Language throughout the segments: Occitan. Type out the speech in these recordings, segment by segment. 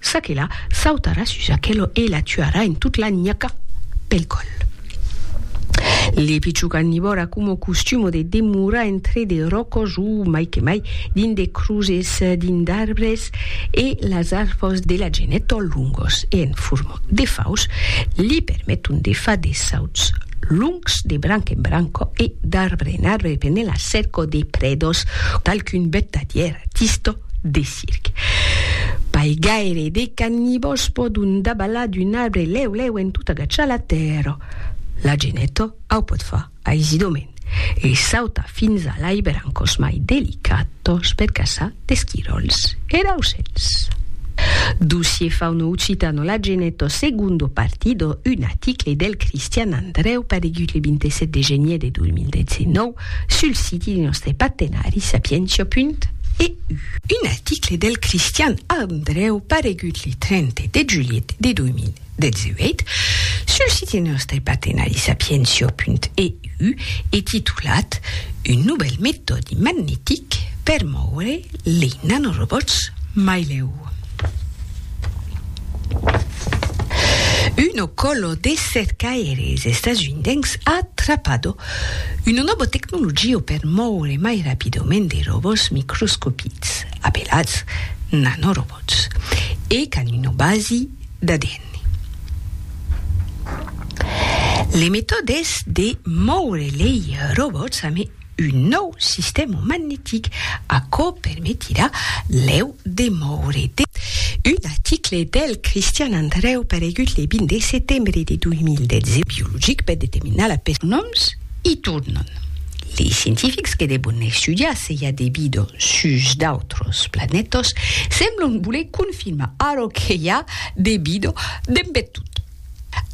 Çaquelà sautarà sus aquelò e la tuarà en tot la nhaca pel còl. Le pichó carnivòr a coma costumo de demorar entre de ròcos o, mai que mai, dins de croses, dins d'arbres e las arfòs de la genet o longos e en forma de faus li permeton de far de sauts longs de branca en branca e d'arbre en arbre pendent la cerca de prèdas d'alcun bèta d'ierra, tista, de. circ. Pas gaire de cannibòls pòdon dabalar d'un arbre lèu lèu en tot agachar la tèrra. La geneta au pòt far aisidament e sautar fins a l'aiber en còs mai delicatos per caçar d'esquiròls e d'aucèls. Dossier Fauno Occitano La geneta Segondo partido, un aticle del Cristian Andrèu paregut le 27 de genier de 2019, sul siti de nòstre partenari sapientia.eu. Un article del Cristian Andrèu paregut le 30 de julhet de 2018 sul siti de nòstre partenari sapientia.eu e titulat Un novèl metòdi magnetic per mòure lei nanorobòts mai lèu. Uno còlo de cercaires estasundencs atrapado Una nòva tecnologia per mòure mai rapidament de robòts microscopits, apelats nanorobòts, e qu'an una basi d'ADN. Le metòde es de mòure lei robòts amé un nòu sistèma magnetic, aquò permetirà lèu Demòure de. Un article del Cristian Andrèu paregut le 20 de setembre de 2010. Biologic per determinar la pes. Nòms i tornan. Lei scientifics que devon estudiar se i a de vida sus d'autras planètas semblon voler confirmar ara que i a de vida dempetot.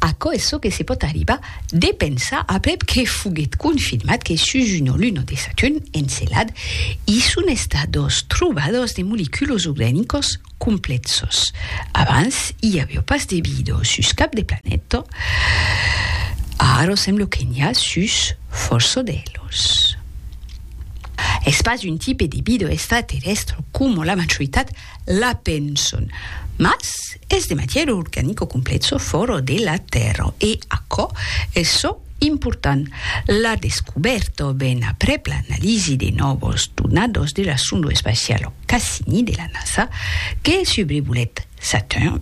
Aquò es çò que se pòt arribar de pensar aprèp que foguèt confirmat que sus una luna de Saturn, Encelad, i son estat dos trobadors de moleculos organicos complèxos. Abans i aviá pas de vida sus cap de planeta, ara sembla que n'i a sus fòrça d'elos. Es pas un tipe de vida extraterrèstra coma la majoritat La penson. Mas es de matièr organic o complet çò fòro de la tèrra e aquò es çò important. La descubèrta o ben aprèp l'analisi de nòvos donados de la sonda espacial Cassini de la NASA que subrevolèt Saturn,